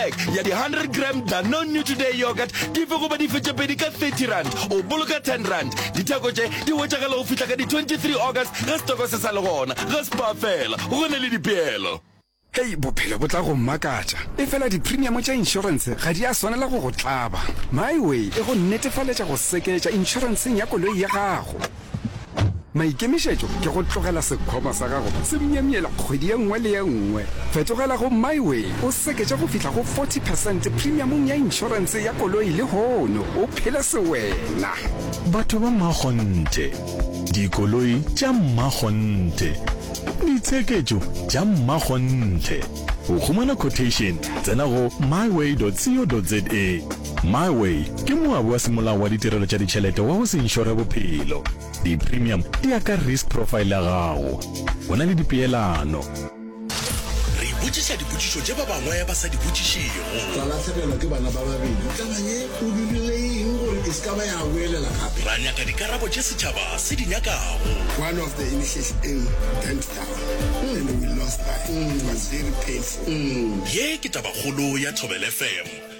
Pack ya di 100 gram Danone New Today Yogurt dife goba dife tše pedi ka 30 rand, o boloka 10 rand. Ditheko tše di hwetšagala go fihla ka di 23 August ge setoko se sa le gona. Ga Spar fela go na le dipeelo. Hei, bophelo bo tla go mmakatša. Efela diprimiamo tša inšorense ga di a swanela go go tlaba. MyWay e go netefaletša go seketša inšorenseng ya koloi ya gago. Maikemišetšo ke go tlogela sekhwama sa gago se myemyela kgwedi ye nngwe le ye nngwe. Fetogela go MyWay o seketše go fihla go 40 percent premiamong ya inšorense ya koloi lehono o phele sewena. Batho ba mmakgonthe, dikoloi tša mmakgonthe, ditsheketšo tša mmakgonthe. Go humana quotation tsena go myway.co.za. My Way ke moabi wa semolao wa ditirelo tša ditšhelete wa go se inšore bophelo. Di-premium di ya ka risk profile ya gago. Go na le dipeelano. Re ipotšiša dipotšišo tše ba bangwe ba sa di botšišego. Ra lahlegelwa ke bana ba babedi. Tla ba ye o dirile eng gore e se ka ba ya boelela gape? Ra nyaka dikarabo tše setšhaba se di nyakago. One of the initiation eng bent down and we lost that. It was very painful. Ye ke tabakgolo ya Thobel FM.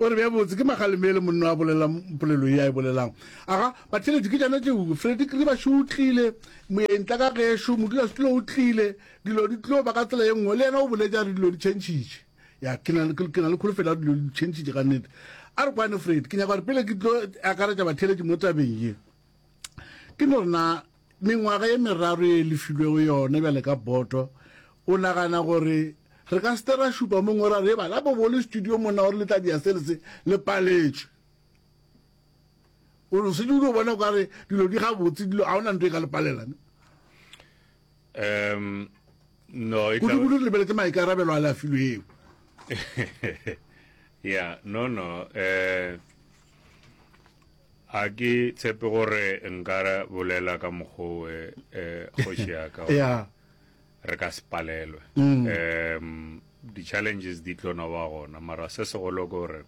o re bja botse ke magaleme e le monno a bolelang polelo e a e bolelang aga batheletši ke jana tšeo fredi kri bašo o tlile moyentla ka gešo modula setulo o tlile dilo di tlio ba ka tsela ye nngwe le yena o boletse a re dilo di tšhentšhitše ya ke na le kholofelo ya dilo di tšhentšhitše ka nnete a re kwane fredi ke nyaka gore pele ke tlo akaretša batheletši mo tabeng ye ke no rena mengwaga ye meraro ye e lefilwego yona bjale ka boto, o nagana gore re ka se te ra šupa mo ngora re bala bo bole studio monna gore le tla dia sele se le paletšwe o se dilo bona ka re dilo di ga botse dilo a ona ntwe e ka le palela ne um no e ka go le lebeletse mai ka rabelo a la filo eo yeah no no eh Ga ke tshepe gore nka bolela ka mokgwa o eh, kgoši ya ka yeah. re ka se palelwe mm. um di-challenges di tlo no ba gona mara se segolo ke gore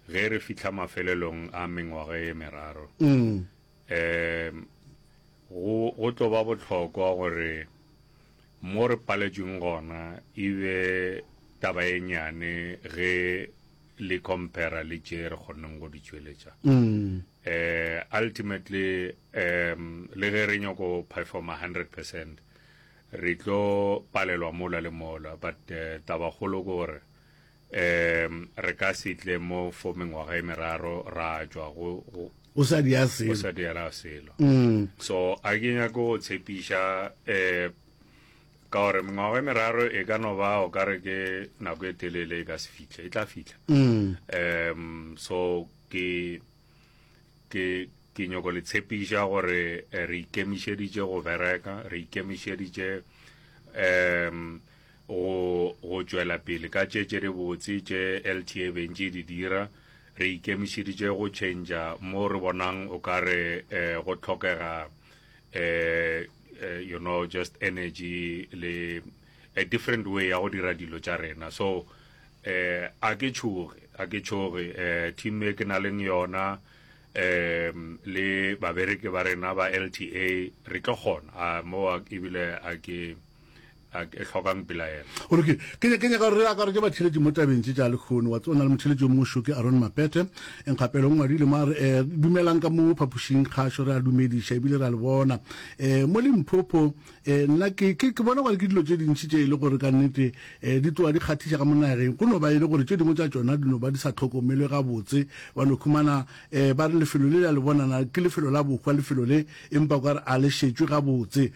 ge re fitlha mafelelong a mengwaga e meraro mm. um go tlo ba botlhokwa gore mo re paletsweng gona e be taba e nyane ge le compara le tše re kgonneng go di tšweletša um ultimately um le ge re nyoko performa 100 percent re tlo palelwa mola le mola but uh, tabakgolo ke gore um re ka se tle mo for mengwaga e meraro ra tšwa go o sa di a selo o sa di a selo mm. so a ke nyako go tshepiša um Ka gore mengwago e meraro e ka no ba o ka re ke nako e telele e ka se fihle e tla fitlha um so ke ke ke nyoko le tshepiša gore eh, re ikemišeditše go bereka re ikemišeditše um go go tšwela pele ka tše tše di botse tše lta bentše di dira re ikemišeditše go change mo re bonang o ka re eh, go tlhokega eh uh, you know just energy le a different way ya go dira dilo tša rena so uh, a ke tšhoge a ke tšhoge uh, team e ke na leng yona um le babereki ba rena ba lta re tlo kgona a mo ebile a ke a e hlokang pelaelo. Go lokile. Ke ne ke nyaka gore re akaretše batheeletši mo tabeng tše tša lehono. Wa tseba, o na le motheeletši yo mongwe šo ke Aaron Mapete. Enkga pele o ngwadile mo a re, eh, Dumelang ka mo phapošing kgašo. Re a dumediša ebile re a le bona eh mo Limpopo. Eh, nna ke, ke, ke bona gore ke dilo tše dintši tše e le gore ka nnete eh di tloga di kgathiša ka mo nageng. Go no ba e le gore tše dingwe tša tšona di no ba di sa hlokomelwe gabotse. Wa no humana eh ba re lefelo le le a le bonana ke lefelo la bohwa lefelo le, empa o ka re a le šetšwe gabotse.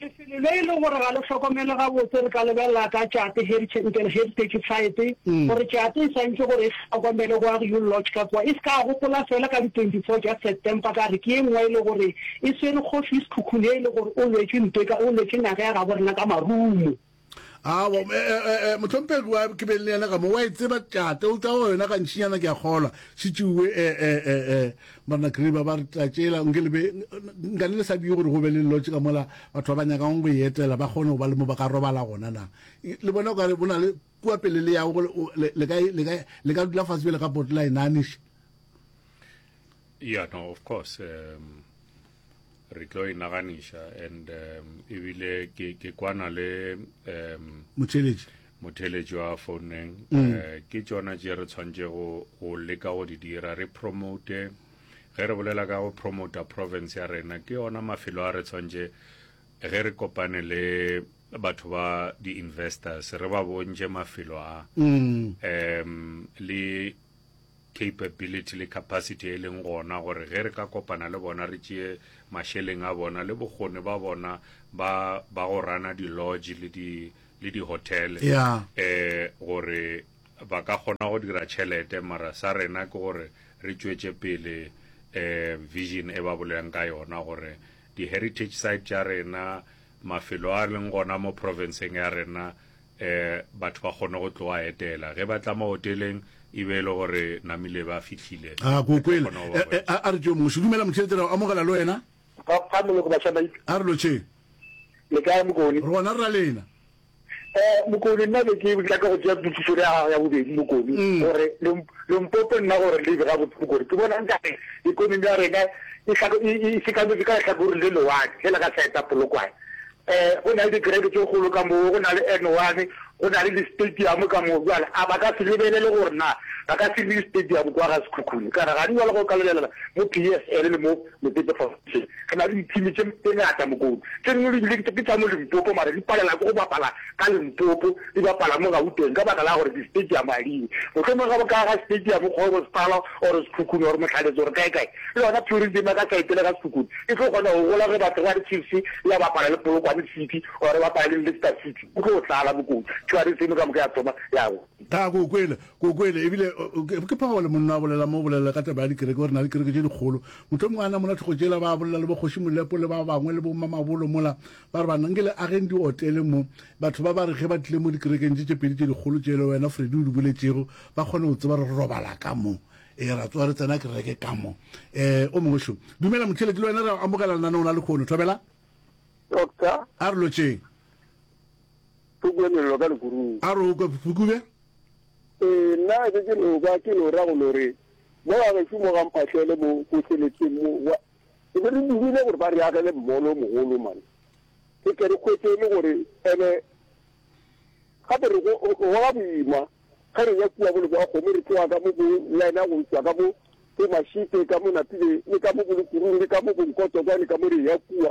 Lefelo le e le gore ga le hlokomele gabotse re ka lebelela ka tšate Heritage Heritage Site gore tšate e swantše gore e hlokomele go Agiul Lodge ka kua. E se ka gopola fela ka di 24 tša September ka re ke ye nngwe e le gore e swere Kgoši Sekhukhune e le gore o lwetše ntwa e ka o lwetše naga ya gabo rena ka marumo. awa motlhomphegi wa ke beng le yena ka mo wa e tseba tšate o tsa go yona gantšinyana ke a kgolwa šitšiwe marna griba ba re tlatšela nke lebe nkane le sa die gore go be le lotse ka mola batho ba ba nyakang go e etela ba kgone go ba le mo ba ka robala gona na le bona o ka re bo na le kua pele le yago le ka dula fatshe bjele ka potla e naniše yeah no of course um, re tlo e naganiša and um, ebile ke, ke kwana le um, motheletši motheletši wa founeng mm. uh, ke tsona tše re tshwanetse go, go leka go di dira re promote ge re bolela ka go promota province ya rena ke yona mafelo a re tshwanetse ge re kopane le batho ba di-investors re ba bontše mafelo a mm. um le capability le capacity e leng gona gore ge re ka kopana le bona re tšee mašeleng a bona le bokgoni ba bona ba ba go rana di lodge le di le di hotel yeah. eh gore ba ka kgona go dira tšhelete mara sa rena ke gore re tšwetše pele eh vision e ba bolelang ka yona gore di heritage site tša rena mafelo a leng gona mo profenseng ya rena um batho ba kgone go tloga etela ge ba tla mo hoteleng e be e le gore namile ba fihlile a ah, ko kwele eh, eh, a re tšo moši dumela motšhelete ra o amogela le wena a re lo tšheng le kae mokone re gona re ra lena Eh, Mokoni, nna be ke nyaka go tšea pukiso le ya gago ya bobedi, Mokoni, mm. gore Limpopo nna gore lebe ga botse, Mokoni, ke bona nkare ikonomi ya rena e, e, e, e sekametse ka letlhakoreng le lewatle, fela ka saeta polokwane. Eh, go na le dikereke tse kgolo ka moo, go na le N one, go na le di-stadium ka moo, jale a ba ka se lebelele gore na ba ka se le di-stadium kwa ga sekhukhune, kana ga di jalo go ka lebelela mo P S L le mo Mokotse Foundation, Re na le dithimi tše tše ngata Mokotse. Tše dingwe di bile ke tša mo Limpopo mara di palela ke go bapala ka Limpopo, di bapala mo Gauteng ka baka la gore di-stadium ga di yo. Mohlomongwe ge ba ka aga stadium Kgorosepala or Sekhukhune or Mohlaletse or kae kae, le yona tourism ya ka side le ka Sekhukhune e tlo kgona go gola ge ba tloga re Chiefs ya bapala le Polokwane City or e bapala le Leicester City, go tlo tlala Mokotse, tourism ka moka ya thoma ya go. Taa, ke o kwele, ke o kwele. Ebile, ke, ke Paul, monna a bolela mo, o bolela ka taba ya dikereke, o re na le dikereke tše dikgolo. Mohlomongwe a namola tlhogo tšela, ba bolela le boKgoši Molepo le ba bangwe, le bomamabolo mola, ba re, Banna, nke le ageng diotele mo, batho ba ba re ge ba tlile mo dikerekeng tše tše pedi tše dikgolo tše le wena Freddie o di boletšego, ba kgone go tseba gore re robala ka mo. Ee, ra tsoga re tsena kereke ka mo. Ee, o mongwe šo. Dumela, motheeletši, le wena re a go amogela lenaneong la lekhono. Thobela. Doctor. A re lotšeng. Ke kwe melelo ka lekurung. A re o kwe phukube? Ee, nna ke ke no kwa, ke no ra go no re, Mo gagešu mo ga mphahlele mo ko seleteng mo, wa. Re be re dumile gore ba re agele mmolo o mogolo, man. Re tle re hwetše e le gore, ene, gape re go, go goga boima, ge re ya kua bole bwa kgomo, re tloga ka mo bo lena go tšwa ka mo bo Mashite, ka mo Napile, le ka mo bo Lekurung, le ka mo bo Nkotokwane, ka mo re ya kua.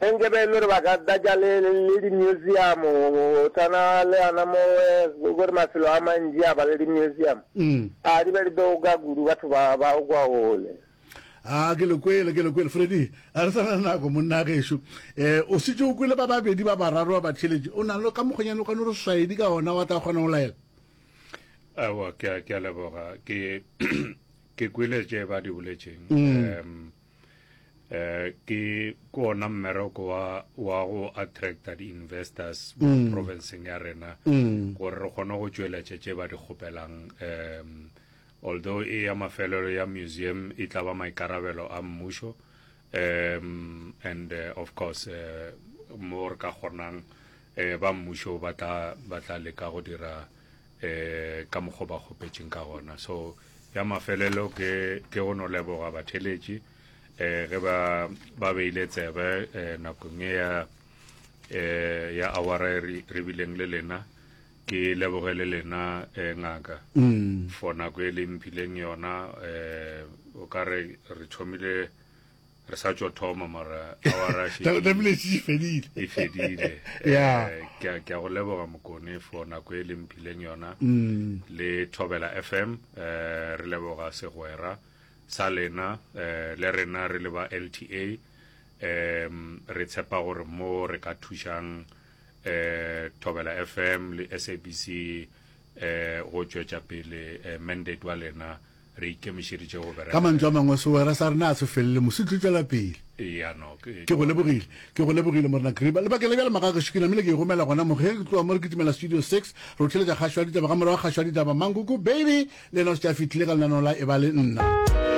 Ge nke be e le gore ba ka tlatša le, le di-museum, go tshwana le ana mo go gore mafelo a mantši a ba le di-museum, a di be di tlo ka kudu batho ba, ba o kwa gole. A, ke le kwele, ke le kwele. Freddy, a re sa na le nako, monna gešo. E, o šetše o kwele ba babedi ba bararo ba batheeletši. O na le ka mokgonyane o ka no re hlaedi ka ona wa tla kgona go laela? Aowa, ke a, ke a leboga. Ke, ke kwele tše ba di boletšeng. Um. eh ke kona mmereko wa wa go attracta di-investors mo mm. provinceng ya rena mm. gore re kgone go tšweletša tše ba di kgopelang um although e ya mafelelo ya museum e tla ba maikarabelo a mmušo um and uh, of course uh, mo re ka kgonang uh, ba mmušo ba tla leka go dira e, ka mokgwa ba kgopetšeng ka gona so ya mafelelo ke ke go no leboga batheletši e, ge ba ba beile tsebe e, nakong e ya e, ya awara e re bileng le lena ke leboge le lena e, ngaka mm. for nako e le mphileng yona e, o ka re re thomile re sa tšo thoma mara awara e fedile e fedile ya eh, ke ke go leboga mokone for nako e leng phileng yona mm. le thobela fm eh re leboga segwera sa lena eh le rena re le ba LTA em re tshepa gore mo re ka thušang eh thobela fm le SABC eh go tšwetša pele eh, mandate wa lena Ka mantšu a mangwe, segwera sa rena ga se felele. Mosi, tlo tšwela pele. Ke go lebogile. Ke go lebogile, Morena Kruber. Lebakeng la bjale, magagešo, ke namile ke e romela gona mo, ge ke tloga mo re kitimela Studio Six, re o theletša kgašo ya ditaba, ka morago ga kgašo ya ditaba, Mankoko, baby, le yena o šetše a fihlile ka lenaneo la Eba le Nna.